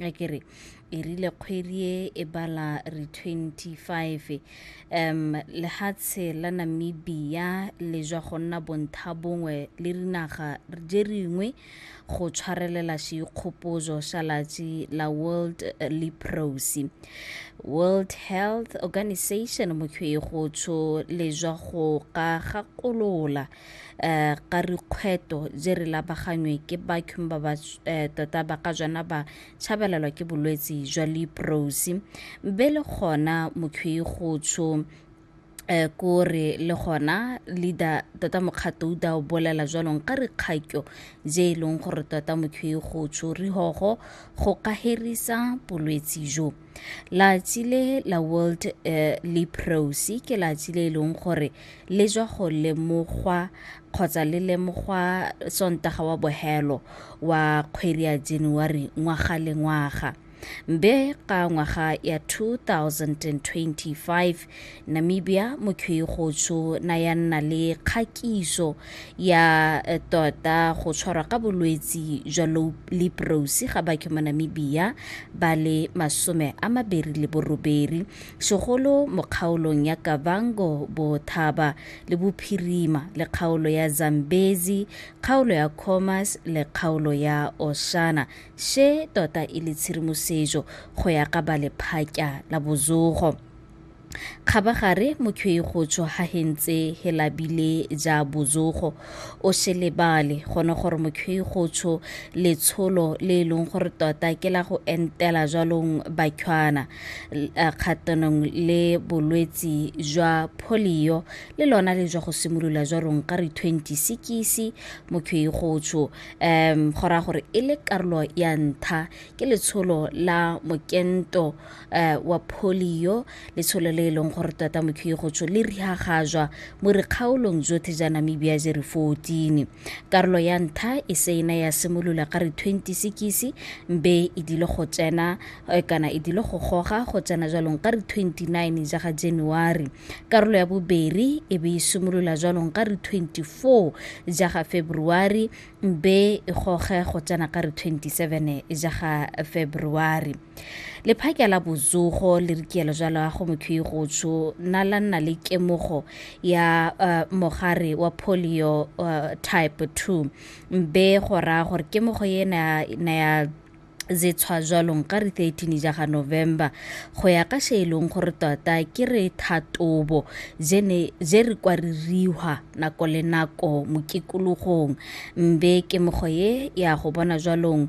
a ke re e rile kgwedi e e bala re 25 um lehatshe la namibia le jwa go nna bontha bongwe le dinaga je ringwe go tshwarelela seikgopozo sa latsi la world eh, leprosy world health organization mokgwego tsho le jwa go ka gakolola eh, ka rikgweto je re labagangwe ke bakhum ba ba eh, tota ba ka jana ba tshabelelwa ke bolwetsi jwa leprosi be le gona mokhwi go tsho eh ko re le gona leader tota mokgato o da o bolela jwalong ka re kgakyo je e leng gore tota mokhwi go tsho rihogo go ka herisa bolwetsi jo Latsi le la World eh, Leprosy ke latsi le e leng gore le jwa go lemogwa kgotsa le lemogwa sontaga wa bohelo wa kgwedi ya January ngwaga le ngwaga. Be ka ngwaga ya 2025 Namibia Mokhigotsho na ya nna le kgakiso ya eh, tota go tshwarwa ka bolwetsi jwa leprosi ga batho mo Namibia ba le masome a mabedi le borobedi segolo mo kgaolong ya Kavango Bothaba le Bophirima le kgaolo ya Zambezi kgaolo ya Khomas le kgaolo ya Oshana se tota e le tshedimosetso go ya ka ba lephakya la bozogo Kgabagare mokhwei go tswa ha hentse he labile ja bozogo o se lebale gone gore mokhwei go tsho letsholo le e leng gore tota ke la go entela jwalong bakhwana kgatanong le bolwetsi jwa polio le lona le jwa go simolola jwalong ka re 20 sekisi mokhwei go tsho um go raya gore e le karolo ya ntha ke letsholo la mokento uh, wa polio letsholo le e leng gore tota mokhiye gotsho le rihagajwa mo dikgaolong jotlhe ja namibia je re 14 karolo ya ntha e se ena ya simolola ka re 20 sekisi mbe e dile go tsena eh, kana e dile go goga go tsena jwalong ka re 29 ja ga january karolo ya boberi e be e simolola jwalong ka re 24 ja ga february mbe e goge go tsena ka re 27 ja ga february lephakela bozogo le rikielo ja loago mokhwi go tsho na la nna le kemogo ya uh, mogare wa polio uh, type 2 mbe go raya gore kemogo ye na ya ze tshwa jwalong ka re 13 ja ga november go ya ka se e leng gore tota ke re thatobo je re kwa re rihwa nako le nako mokikologong mbe ke mogo ye ya go bona jwalong